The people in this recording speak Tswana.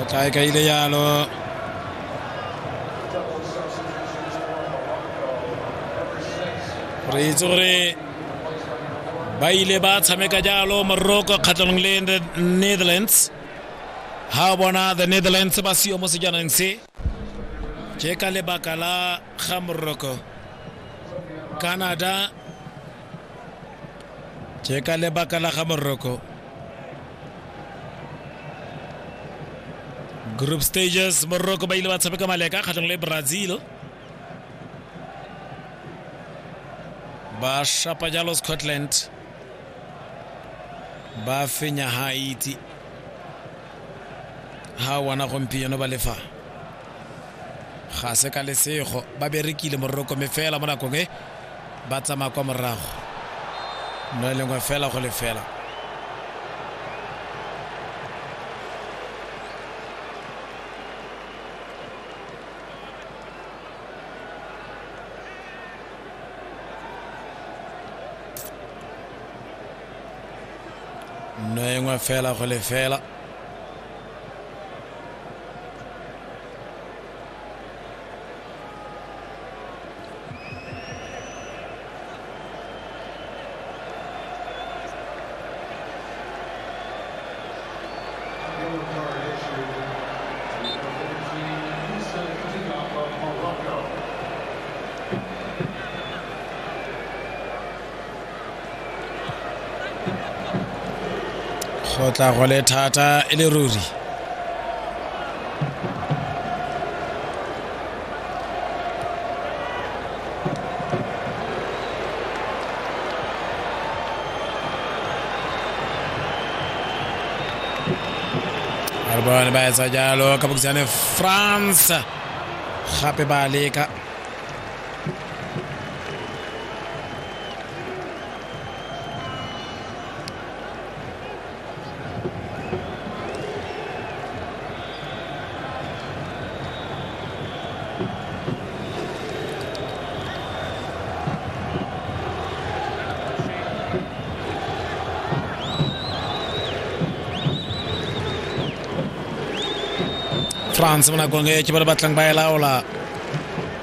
Otra que ahí ya lo re itse gore ba ile ba tshameka jalo morocco kgatlhanong le netherlands ha bona the netherlands ba seo mo sejanang se ke ka lebaka la ga moroko canada ke ka lebaka la ga moroko group stages moroko ba ile ba tshameka maleka kgatlhong le brazil ba shapa jalo scotland ba fenya haiti ha wana gompieno ba lefa ga se ka lesego ba berekile mororokome fela mo nakong e ba tsamaya kwa morago no e lengwe fela go lefela nno e nngwe fela go lefela go tla go le thata e le ruri bone ba etsa jalo ka bokisane france gape ba leka france mo nakong e ke ba le batlang ba e laola